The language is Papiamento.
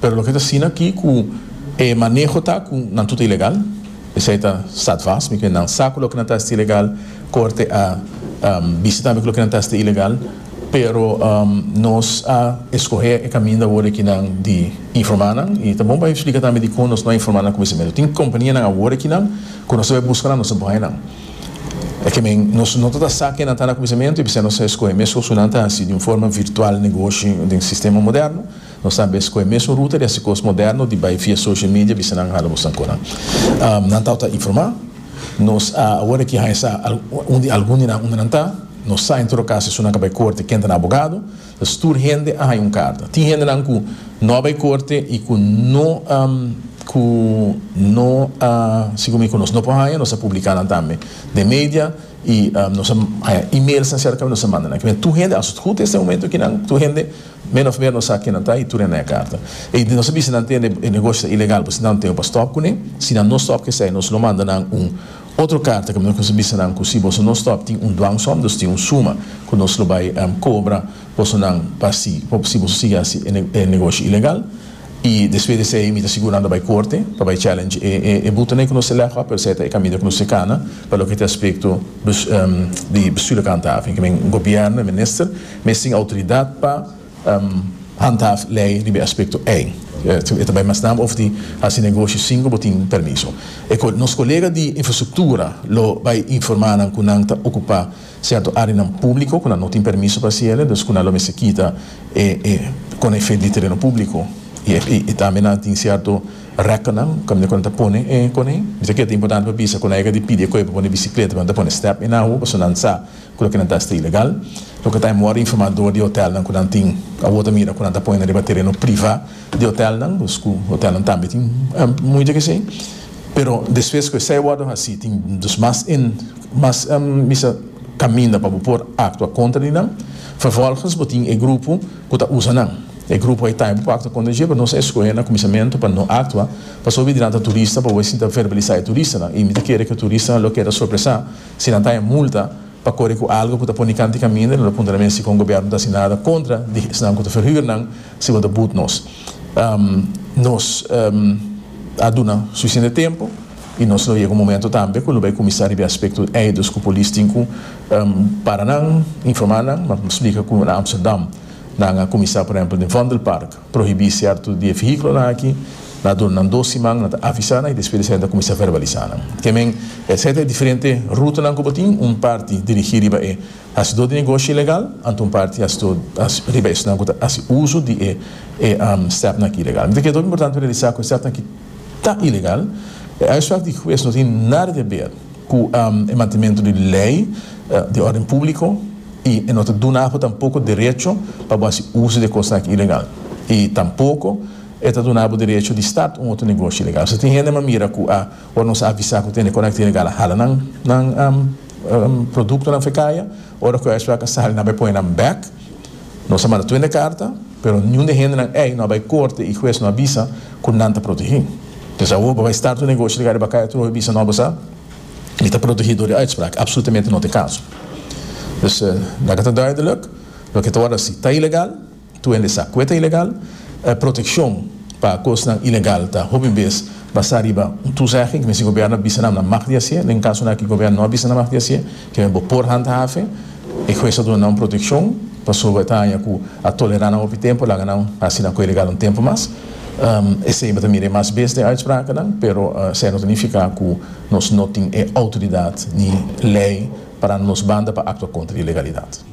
Pero loke ta asina aki ku e maneho ta ku nan tur ta ilegal, esei ta stadvast, mi kree nan sa ku loke nan ta hasi ta ilegal, korte a bisa tambe ku loke nan ta hasi ta ilegal, pero nos a eskohé e kaminda awor aki nan di informá nan i ta bon pa eksplika tambe dikon nos no a informá nan kuminsamentu, nos tin kompanianan awor aki nan ku nos ta bai buska nan, nos ta bai nan, e ke men nos no ta ta sa ke nan ta na kuminsamentu i p'esei nos a eskohe mes ku su nan ta hasi di un forma virtual negoshi den sistema moderno. Nos tambe a scohe mesun ruta di haci cos moderno di bay via social media bisa nan hala boso nan conan. Nan tau ta informa. Nos a awor aki haña sa un di algun di nan unda nan ta. Nos sa en todo cas esun nan ka bay corte ken ta nan abogado ta stuur hende a haña un carta. Tin hendenan cu no a bay corte y cu no cu no a sigue mi cu nos no por haña nos a publica nan tambe den media y nos a haña emails nan cerca nos a manda nan aki. Tur hende a sut hoed este momento aki nan tur hende. Min of mer no sa kinan ta y tur hende a carta. Y nos a bisti nan tende e negoshi ta ilegal pasobra nan no tene pa stop cune. Si nan no stop cu esai nos lo manda nan un otro carta cu nos a bisti nan cu si boso no stop tin un dwangsom, dus tin un suma cu nos lo bay cobra boso nan pa si si boso sigui haci e negoshi ilegal. Y despues di esai mi ta sigur nan ta bay corte pa bay challenge e butonan cu nos ta legba pero esai ta e caminda cu nos ta cana pa loke ta aspecto di bestuur loke antafe, cu men gobierno, e minister. mes tin outoridat pa handhaf lei riba e aspekto ei. E ta bai mas naba over di hasi negoshi sin ku bo tin permiso. E nos kolega di infrastruktura lo bai informá nan ku nan ta okupá sierto áreanan públiko ku nan no tin permiso pa hasi el'e, dus ku nan lo mester kita e kona efet di tereno públiko i tambe nan tin sierto rekkennan kaminda ku nan ta pone e kona ei. Mi ta kere ta importante pa bisa ku nan yega di pidi e koe pa pone bisikletanan ta pone step en awa pasobra nan sa. ku loke nan ta hasta ilegal, loke ta mor informadó di hotelnan ku nan tin, awor ta mira ku nan ta pone nan riba tereno privá di hotelnan, dus ku hotelnan tambe tin mucha ke hasi, pero despues ku esei wòrdu hasi tin dus mas en mas misa kaminda pa bo por aktua kontra di nan, vervolgens bo tin e grupo ku ta usa nan, e grupo ei ta bo por aktua kontra di dje, pero nos a eskohe na kuminsamentu pa no aktua, pasobra di nan ta turista pa bo esin ta verbalisá e turistanan, i mi ta kere ku e turistanan lo keda sorpresá. si nan ta e multa pa kore ku algu ku ta pone kanti kaminda no ta puntra mes si kon gobièrnu no ta hasi nada kontra di esnan ku ta ferhür nan si bo ta but nos nos a duna sufisiente tempu i nos lo yega un momentu tambe ku lo bai kuminsá riba e aspekto ei dus ku polis tin ku para nan informá nan splika ku na Amsterdam nan a kuminsá por ehèmpel den vondelpark. prohibí sierto di e vehículonan aki, na duna nan dos siman, nan ta avisá nan y despues esaki ta cuminsá verbalisá nan. Ke men e seta e diferente rutanan cu bo tin, un parti dirigí riba e hacidó di negoshi ilegal, anto un parti hacidó riba esnan cu ta haci uso di e e stepnan aki ilegal. Mi ta kere tok importante pa realisá cu e stepnan aki ta ilegal, e uitspraak di huez no tin nada di haber. cu e mantementu di ley di orden publico y e no ta duna abo tampoco derecho pa bo haci uzo di e cosnan aki ilegal y tampoco e ta duna abo derecho di start un otro negoshi ilegal. Nos a tin hende ma mira cu a ora nos a avisa cu ta hende conecta ilegal a hala nan nan productonan f'e caya, ora cu esnan a sali nan b'e pone nan bek, nos a manda tu hende carta. Pero niun di hendenan ei no a bai korte i hues no a bisa ku nan ta protegí. P'es awor bo bai start un negoshi di Kariba Kai atrohi bisa no bo sa mi ta protegí dor di uitsprak? Apsolutamente no ta e kaso. Dus nan ka ta duideluk loke ta wòrdu hasi ta ilegal, tur hende sa kue ta ilegal. E protekshon pa kosnan ilegal ta hopi bes basá riba un tuzegging, misti gobierno a bisa nan nan mag di hasié. Den kasonan aki gobierno no a bisa nan mag di hasié. Kende bo por handha fe, e hues a duna nan protekshon, pasobra e ta haña ku a tolerá nan hopi tempu, laga nan asina ku e legal un tempu mas. Esei bo ta mira e mas bes den uitsprakennan, pero esei no ta nifiká ku nos no tin e outoridat ni lei parando nos banda pa aktua kontra di ilegalidat.